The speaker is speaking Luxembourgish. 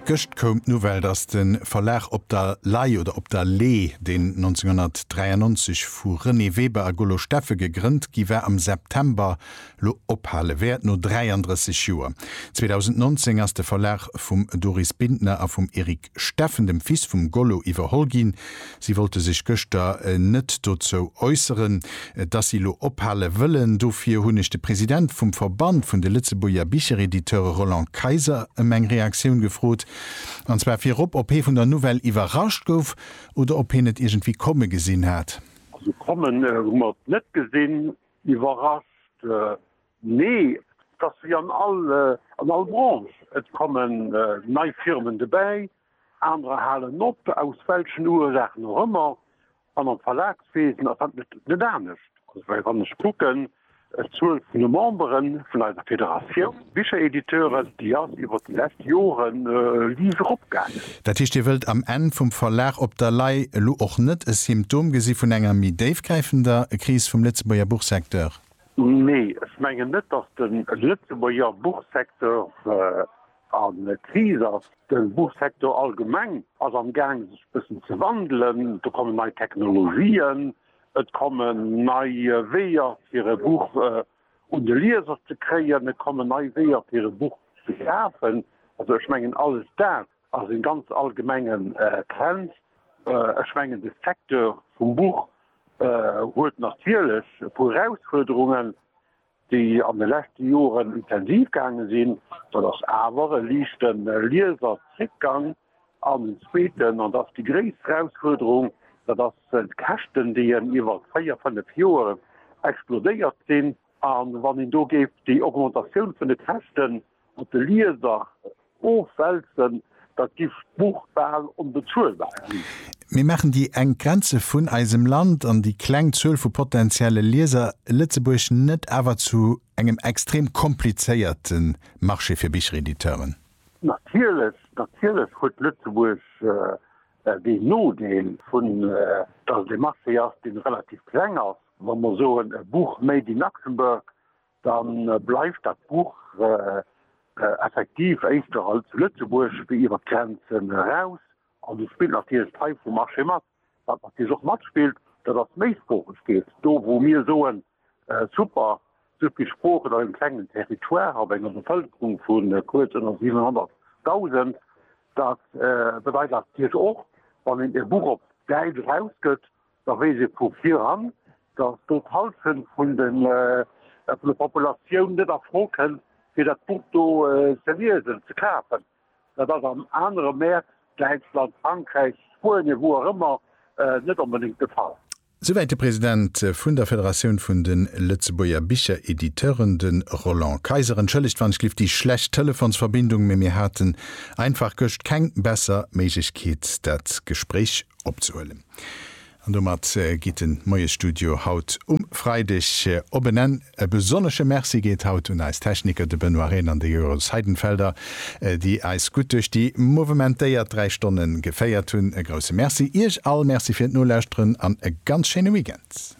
Gëscht koum d'Nouvelle, dass de Verlag Op der Lay oder Op der Lee, deen 1993 vu Renée Weber a Golo Steffel gegrënnt gi war, am September elo ophale wäert, no 33 Joer. 2019 ass de Verlag vum Doris Bintner a vum Eric Steffen, dem Fils vum Gollo, iwwerholl ginn. Si wollte sech gëschter net dozou äusseren, dass si elo ophale wëllen. Dofir hunn ech de President vum Verband vun de Lëtzebuerger Bicherediteure Roland Kayser ëm eng Reaktioun gefrot, an zwar virop, ob hee vun der Nouvelle iwwerrascht gouf oder ob hien et iergendwéi komme gesinn hat. Also kommen hu mer et net gesinn. Iwwerrascht Nee, et ass wéi an all Branche, et kommen nei Firmen dobäi, anerer halen op, aus welchen Ursaachen och ëmmer. An am Verlagswesen ass dat net anescht. Well wann ech kucken, d'Zuel vun de Memberen vun eiser Federatioun Bicherediteuren, déi ass iwwer déi lescht Jore liicht eropgaangen. Dat heescht, Dir wëllt am Enn vum Verlag op der Lay elo och net e Symptom gesi vun enger méi déifgräifender Kris vum Lëtzebuerger Buchsecteur? Nee, ech mengen net, datt de Lëtzebuerger Buchsecteur a Kris ass. De Buchsecteur allgemeng ass am Gaang sech e bëssen ze wandelen. Do kommen nei Technologien, et kommen nei Weeër fir e Buch un de Lieser ze kréien, et kommen nei Weeër fir e Buch ze kafen. Also ech mengen alles dat ass e ganz allgemengen Trend. Ech mengen de Secteur vum Buch huet natierlech e puer Erausfuerderungen, déi an de leschte Joren intensiv gaange sinn. Dat ass awer e liichte Lieserzréckgang. An den zweeten, an dat ass déi gréisst Erausfuerderung, dat ass d'Käschten, déi en iwwer véier, fënnef Joer explodéiert sinn. A wann een do géif déi Augmentatioun vun de Käschten Op de Lieser ofwälzen, da giff d'Buch bal onbezuelbar ginn. Mir maachen déi enk Grenze vun eisem Land an déi kleng Zuel vu potentielle Lieser Lëtzebuerg net awer zu engem extrem komplizéierte Marché fir Bicherediteuren? Natierlech, natierlech huet Lëtzebuerg deen Nodeel vun, dass et e Marché ass, dee relativ kleng ass. Wa mer soen, e Buch made in Luxembourg, Da bleift dat Buch effektiv éischter als Lëtzebuerg wéi iwwer d'Grenzen eraus. An do spillt natierlech d'Fei vum Marché mat. Wat natierlech och matspillt, dat ass d'Méisproochegkeet. Do wou mir soen, super, esou vill Sproochen op engem klengen Territoire, op enger Bevëlkerung vu kuerz ënner 700.000, dat bedeit natierlech och, wann een e Buch op Däitsch erausgëtt, da weess ee vu viran, datt do d'Hallschent vun der Populatioun net a Fro kënn, fir dat Buch do ze liesen, ze kafen. Dat ass an anere Mäert, Däitschland, Frankräich, Spuenien, wou och ëmmer, net onbedéngt de Fall. Souwäit de President vun der Federatioun vun de Lëtzebuerger Bicherediteuren, de Roland Kayser. Entschëllegt, wann ech lift déi schlecht Telefonsverbindung, mee mir haten einfach gëscht keng besser Méiglechkeet, dat Gespréich opzehuelen. An domat geet den Moiesstudio haut um Freideg op en Enn. E besonnesche Merci geet haut un eis Techniker, de Benoît Rehn an de Jeroen Seidenfelder, déi eis gutt duerch déi mouvementéiert 3 Stonne geféiert hunn. E grousse Merci Iech all, Merci fir d'Nolauschteren an e ganz schéine Weekend.